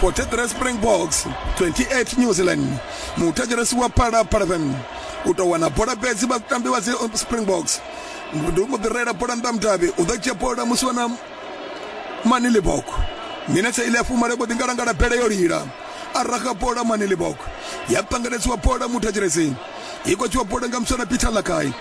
43 springboks 28 new zealand muthetshelesi wa phala phala fm u tou wana bola fhedzi vhatambi vha springboks ndi u mu ḓirela bola nnḓa mudavhi u ḓo dzhia bola musi wana manilibok minetse ile ya fumale vho ḓingalangala bele yo lila a raga bola manilibok ya ṱangeledziwa bola muthetshelesi i khou tshiwa bola nga muswana peter lakai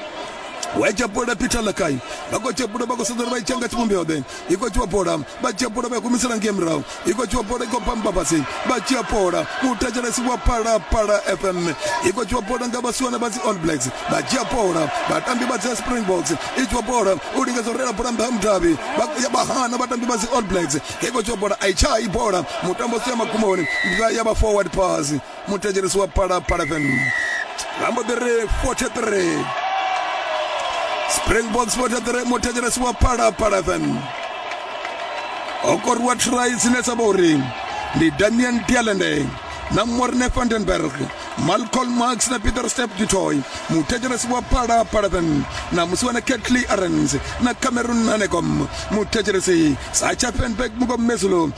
waitsha bola peter lakai vha khou tsha bola vha khou sedza uri vha itsha nga tshivhumbeo ḓe i khou dzhiwa bola vha dzhia bola vha ya kumisela ngei murahu i khou dzhiwa bola i khou pamba fhasi vha dzhia bola muthetshelesi wa phalaphala fm i khou dzhiwa bola nga vhasiwana vha dzi all blacks vha dzhia bola vhatambi vha dzi springboks i dzhiwa bola u lingedza u reila bola nṱha ha mudavhi vha hana vhatambi vha dzi all blacks i khou dzhiwa bola a i tshai bola mutambo si ya magumoni ya vha forward pass muthetshelesi wa phalaphala fm vha mbo ḓi ri 43 springboks 43 muthetshelesi wa phalaphala fm o koriwa try dzine dza vha uri ndi damian dialende na morne vandenberg malcolm max na peter step dutoy muthetshelesi wa phala palaven na musi wana ketly arens na cameron nanecom muthetshelesi sacha fenberg mukomezulo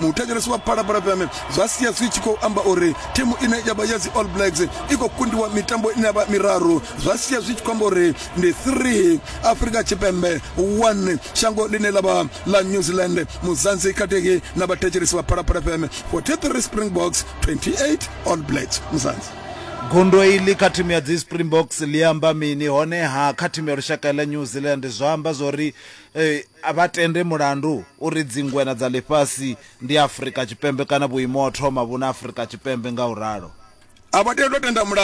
muthetshelesi wa phalaphala fm zwa sia zwi tshi khou amba uri thimu ine ya vha ya dzi all blacks i khou kundiwa mitambo ine ya vha miraru zwa sia zwi tshi khou amba uri ndi 3 afrika tshipembe 1 shango ḽine ḽa vha ḽa new zealand muzanzi khathihi na vhathetshelesi vha phalaphala fm 43 springboks 28 all blacks muzanzi gundo iḽi kha thimu ya dzi springboks ḽi amba mini honeha kha thimu ya lushaka ḽa new zealand zwa amba zwori eh, A vha tende mulandu uri dzingwena dza ḽifhasi ndi Afrika Tshipembe kana vhuimo ha u thoma vhu na Afrika Tshipembe nga u ralo. A vha tendi u tenda mulandu.